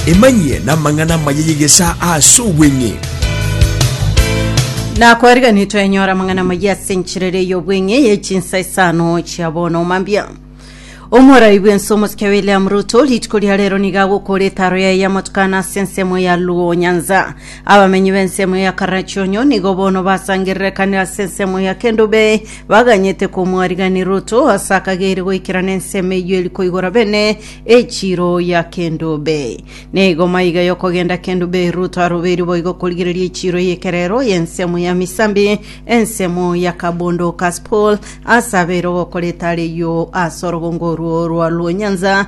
Emanyie namang'ana amaya y'egesaa ase obweng'e. Nakwariganire twenyora amang'ana amaya ase enchirere y'obweng'e ye chinsa isano chia bono mambia omorai bwense omosike william ruto rituko ria rero nigo agokora etaro yaye y'amatukano ase ensemo ya luo nyanza abamenyi b'ensemo ya karachonyo nigo bono basangererekanire ase ensemo ya kendube Baganyete komwariganera ruto ase akageire goikerana ensemo eyio eri koigora bene echiro ya kendo be. Neigo maiga yokogenda kendo be ruto arobeiri boigo korigereria echiro y'ekerero y'ensemo ya misambi, ensemo ya kabondo Kaspool, ase abeire ogokora etare eyio ase orogongo orwo rwa Luonyanza,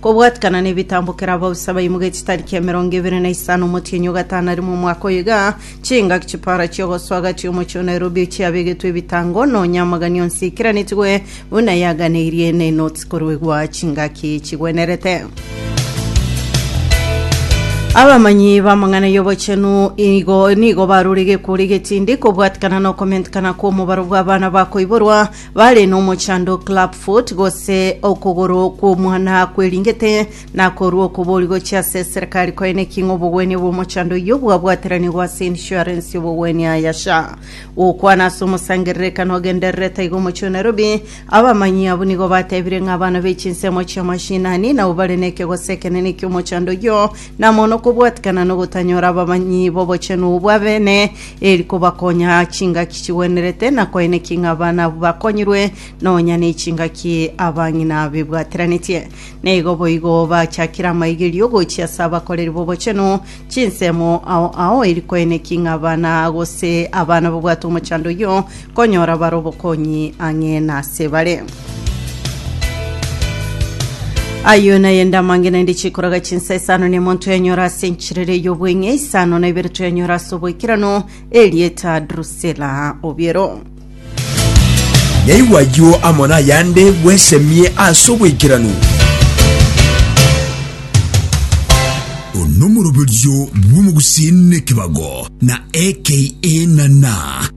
Kobwatikana nebitambo kera abausa baimoga echitari kia emerongo ebere na isano omotienyi ogatano arimo omwaka oyo iga, chingaki chipara chiogosoa agati omochie o Nairobi chiabegetwe ebitango, nonya amagani onsi aikeranetigwe buna yaganeirie ne inoti koruegwa chingaki chigwenerete. Abamanyi b'amang'ana y'obochenu igo nigo barure gekworo egetindi kobwatikana nokomentekana kw'omobaro bw'abana bakoiborwa Bare nomochando clubfoot gose okogoro kw'omwana kweringete nakorwa okobori gochia ase serikari koe naki ng'a obogwenia bw'omochando oyio bwabwateranigwa ase insurance y'obogwenia ya SHA. Gokwana ase omosangererekano ogendererete iga omochie o Nairobi, abamanyi abwo nigo batebire ng'a abana be chinsemo chia mashinani nabo bare nekegoso ekenene ekiomochando oyio, na mono kobwatikana nogotanyora abamanyi b'obochenu obwa bene, eri kobakonya chingaki chigwenerete na koenekia ng'a abana abwo bakonyirwe nonya nechingaki abang'ina bebwateranetie. Na igo boigo bachakire amaigerio gochia ase abakoreri b'obochenu chinsemo ao ao eri koenekia ng'a abana gose abana babwate omochando oyio Konyora bare obokonyi ang'e nase bare. Ayio nayende amang'ina inde chikoraga chinsa isano ne monto yanyora ase enchirere y'obweng'e isano na ibere toyanyora ase oboikerano erieta Drusela obiero. Yaigwa ayio amo nayande bwesemie ase oboikeranu. Onomoroberio bw'omogusi nekebago na aka na na.